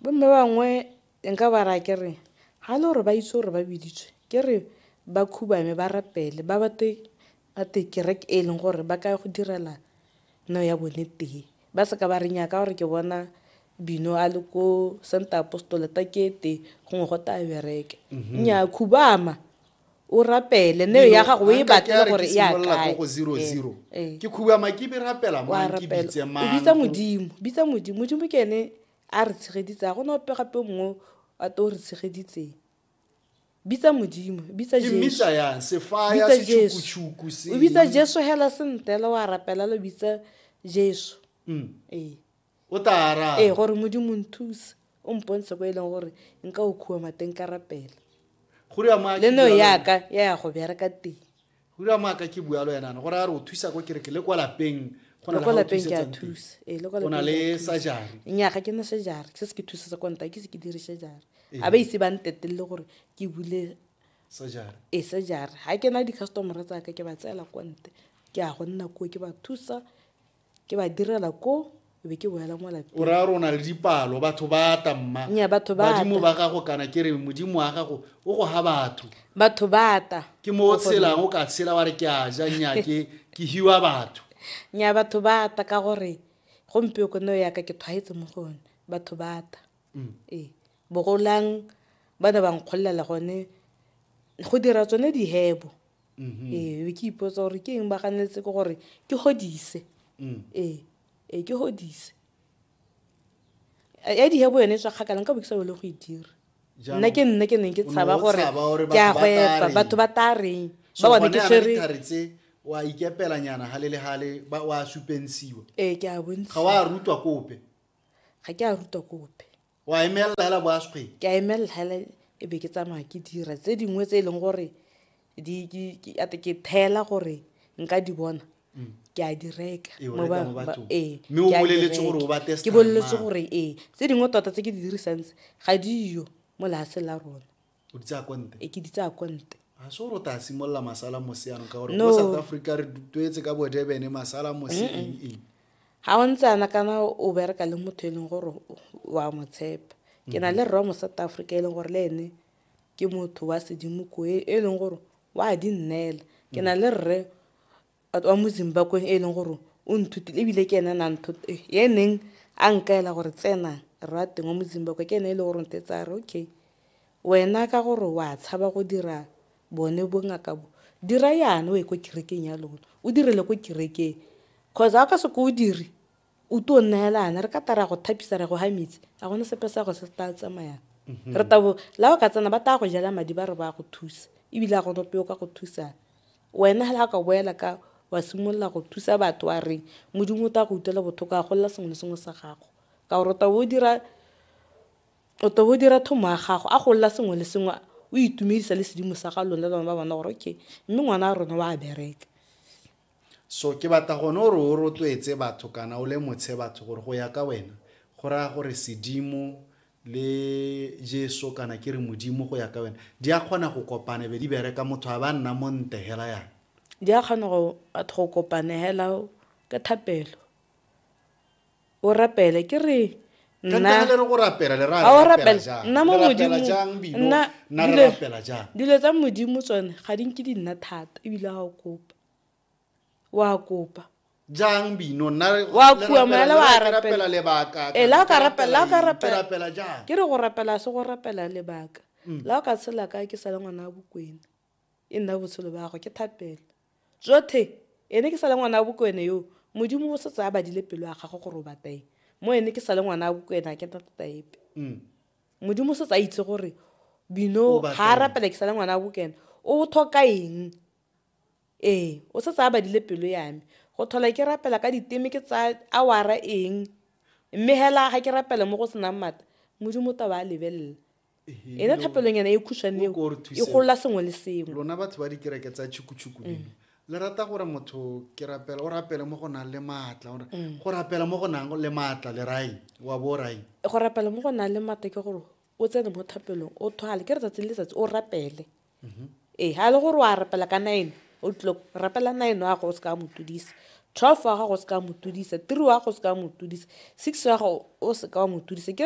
Bo mme bangwe nka ba raya ke re ha e le gore ba itse gore ba biditswe ke re ba khubame ba rapele ba batle gotwe kereke e leng gore ba ka ya go direla neo ya bone teng. Ba seka ba re nyaa ka gore ke bona Bino a le ko Centre Apostolic gongwe gotwe a bereke, nyaa khubama. o rapele neo ya gago o e batle gore e akae go zero eh, zero eh. ke khuba makibi rapela mo ke bitse mang bitsa modimo bitsa modimo modimo ke ene a re tshegeditse a gona ope gape mongwe a to re tshegeditseng bitsa modimo bitsa jesu hela sentela wa rapela lo bitsa jesu mm. ee o tla araba ee gore modimo nthuse o mpontshe ko e leng gore nka o khuwa mateng ka rapela go ria moa le no yaka ya ya go bereka teng go ria moa ka ke bua lo yenana gore a re o thusa ko kereke le kwa lapeng go na le go lapeng ke a thusa ee le kwa lapeng na le sajare nya ga ke na sajare se se ke thusa sa konta ke se ke dire sajare a ba ise ba ntetelele gore ke bule sajare ee sajare ga ke na di customer tsa ka ke ba tsela konte ke a go nna ko ke ba thusa ke ba direla ko e be ke boela mo lapeng o raya rona le dipalo batho ba ata mma Nya, batho ba badimo ba gago kana ke re modimo wa gago o go ga batho batho ba ata ke mo o tshelang o ka tshela wa re ke a ja nya ke ke hiwa batho nya batho ba ata ka gore gompieko neo yaka ke tshwaetse mo go one batho ba ata mm. ee bogolang ba ne ba nkgololela gone go dira tsone dihebo mm-hmm. ee ke ipotsa gore ke eng ba ganetse ke gore ke godise mm. ee ee ke godise ya dihebo yone e tswa kgakala nka bo ke sa bele go e dira nna ke nne ke neng ke tshaba gore ke a go epa batho ba ta reng ba bone ke tshwere wa ikepelanyana gale le gale wa supensiwa ee ke a bontsha ga wa rutwa kope ga ke a ruta ko ope wa emelela hela boaskgweng ke a emelela hela e be ke tsamaya ke dira tse dingwe tse e leng gore ate ke thela gore nka di bona mm. ke a di reka ee, ee, ke boleletse gore ee tse dingwe tota tse ke di dirisantse ga diyo mo lefatsheng la rona o di tsaya konte e ke di tsaya konte ga se gore o ta simolola masala mose yanong ka gore mo south africa re tuetse ka bodebene masala mose eng eng ga o ntse ana kana o bereka le motho e leng gore wa mo tshepa ke na le rra mo south africa e leng gore le ene ke motho wa sedimo ko e, e leng gore wa di nnela ke na le rre batho ba mo zimbakweng e leng gore o nthutile ebile ke ene na nthot eh, e neng a nkaela gore tsenang rre wa teng wa mo zimbabwe ke ene e leng gore nte tsa re okay wena ka gore wa tshaba go dira bone bongaka bo dira yana o ye ko kerekeng ya lona o direle ko kerekeng cause ga o ka se ko o dire O tuo nnaelana re ka tara go thapisa ra go ha metsi a gone sepe sa go se tla tsamayang mhm. re tabo la o ka tsena ba tla go jela madi ba re ba go thusa ebile a gone peo ka go thusana wena ga ka boela ka wa simolola go thusa batho wa reng modimo o tla go utlwela botlhoko a golela sengwe le sengwe sa gago ka gore o tabo o dira o tabo o dira thomo ya gago a golela sengwe le sengwe o itumedisa le sedimo sa ga lone le bana ba bona gore okay mme ngwana a rona wa bereka So ke batla gone gore o rotloetse batho kana o lemotshe batho gore go ya ka wena go raya gore sedimo le jesu kana ke re modimo go ya ka wena di a kgona go kopana be di bereka motho a ba nna mo nte hela yana di a kgona go batho go kopana hela ke thapelo o rapele ke re dilo tsa modimo tsone ga di nke di nna thata ebile ga o kopa wa kopa jang bino wa kua moela wa rapela lebaka e la ka rapela la ka rapela jang ke re go rapela se go rapela lebaka mm. la ka tshela ka ke sala ngwana wa bokwena E nna botshelo ba gagwe, ke thapelo. Jothe, ene ke sa le ngwana wa Bokwena yoo, Modimo o setse a badile pelo ya gagwe gore o bata eng. Mo ene ke sa le ngwana wa Bokwena, ga ke na thata epe. Modimo o setse a itse gore Bino ga a rapela ke sa le ngwana wa Bokwena, o thoka eng. Ee, o setse a badile pelo ya me. Go tlhola ke rapela ka diteme ke tsaya awara eng, mme hela ga ke rapela mo go senang mata, Modimo o tla ba a lebelela. ena thapelonyana e khušwane eo e golola sengwe le sengwe lona batho ba dikereke tsa tšhukutšhuku mm. dino le rata gore motho ke rapela o rapele mo go nang le maatla gore mm. go rapela mo go nang le maatla le raeng wa bo raeng go rapela mo go nang le maatla ke gore o tsene mo thapelong o thwale ke letsatsi le letsatsi o rapele mm-hmm. ee ga e le gore wa rapela ka nine o tlilo rapela nine wa gago o se ka motodisa twelve wa gago o se ka motodisa three wa gago o se ka motodisa six wa gago o se ka wa motodisa